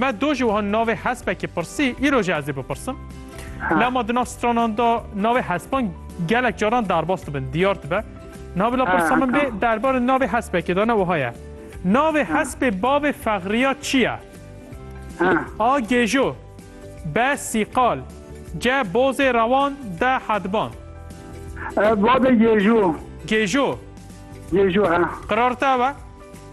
Me do jî wiha navê hespekî pirsî, îro jî ez ê bipirsim. Lama di nav stranan de navê hespan gelek caran derbas dibin, diyar dibe. Navê la pirsa min bê derbarê navê hespekê de ne wiha ye. Navê hespê bavê Fexriya çi ye? A. Gêjo B. Sîqal C. Bozê rewan D. Hedban Bavê Gêjo Gêjo Gêjo he. Qirar te ew e?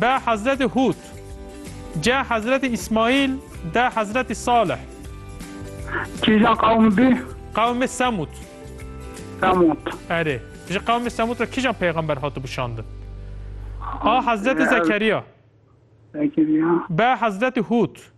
Be Hezretê Hûd, ce Hezretê Îsmaîl, de Hezretê Salih. Kîjan qewm bî? Qewmê Semûd. Semûd. Erê. Ji qewmê Semûd re kîjan peyxember hatibû şandin? A Hezretê Zekeriya. Zekeriya. Be Hezretê Hûd.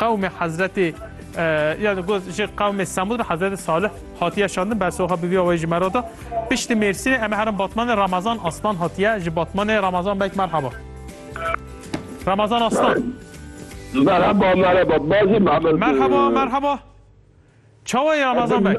Qewmê Hezretê yani goz ji qewmê Semud re Hezretê Salih hatiye şandin bersoxa bi vîya wê ji me re da. Piştî Mêrsînê em herin Batmanê Ramazan Aslan hatiye ji Batmanê Ramazan bek merhaba. Ramazan Aslan. Merhaba merhaba bazî Mehmet. Merhaba merhaba. Çawa ye Ramazan bek?